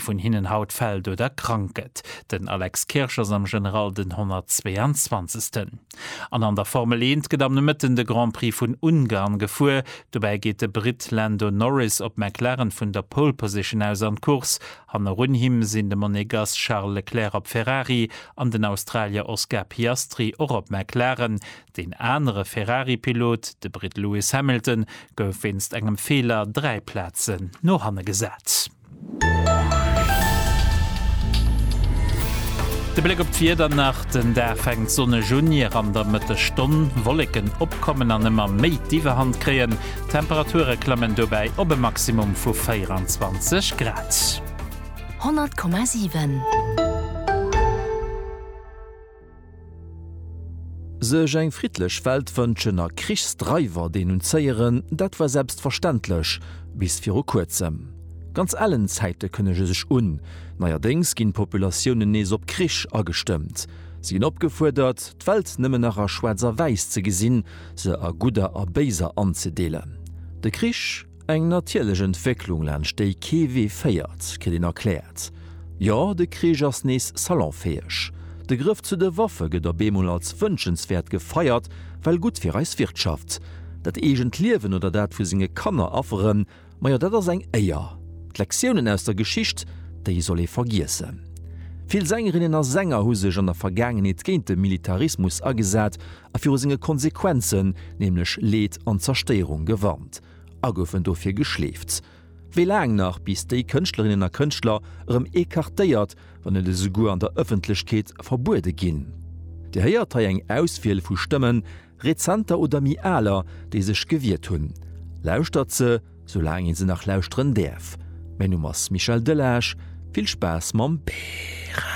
vun hinnen haut fält oder krank gëtt. Den Alex Kirsch ass am General den 122. An an der Formel Eent gëtt am Nomëtten de Grand Prix vun Ungarn gefuer. Dobäi geet de Britt Lando Norris op McLaren vun der Pole Position aus an d'Course. Hannerun him sinn de Monegass Charles Leclerc op Ferrari an den Australier Oscar Piastri och op McLaren. Deen anere Ferrari-Pilot, de Britt Lewis Hamilton, gouf wéinst engem Feeler dräi Plazen no hanne gesat. De Bléck op d'Wieder nach, Den Dag fänkt sonneg un, ier an der Mëttesstonn Wolleken opkommen an ëmmer méi d'Iwwerhand kréien. D'Temperature klammen dobäi op e Maximum vu 24 Grad. 100,7. Sech eng friddlech Welt wënschen a Krichsdreiwer denunzéieren, dat war selbstverständlech, bis viru kuerzem. Ganz ellen Zäite kënnege sech un. Neierdéngs ginn d'Populatiounen nees op Krich agestëmmt. Si ginn opgefuerdert, d'Welt nëmmen nach a schwaarz a wäiss ze gesinn, se a gudder a béiser anzedeelen. De Krich? Eng natierlech Entwécklung, laanscht déi kee Wee féiert, kritt een erkläert. Jo, de Krich ass nees salonfäeg. De Grëff zu de Waffe gëtt op eemol als wënschenswäert gefeiert, well gutt fir eis Wirtschaft. Dat eegent Liewen oder dat vu senge Kanner afferen, majo dat ass eng Éier. D'Lektiounen aus der Geschicht, déi soll ee vergiessen. Vill Sängerinnen a Sänger hu sech an der Vergaangenheet géint de Militarismus agesat a viru senge Konsequenzen, nämlech Leed an Zerstéierung, gewarnt a goufen dofir geschleeft. Wéi laang nach, bis déi Kënschtlerinnen a Kënschtler erëm écartéiert, wann net esouguer an der Ëffentlechkeet verbuede ginn? Dir héiert hei eng Auswiel vu Stëmmen, rezenter oder méi aler, déi sech gewiert hunn. Lauschtert se, soulaang ee se nach lauschteren däerf. Mäin Numm ass Michel Delage. Vill Spaass mam Bären!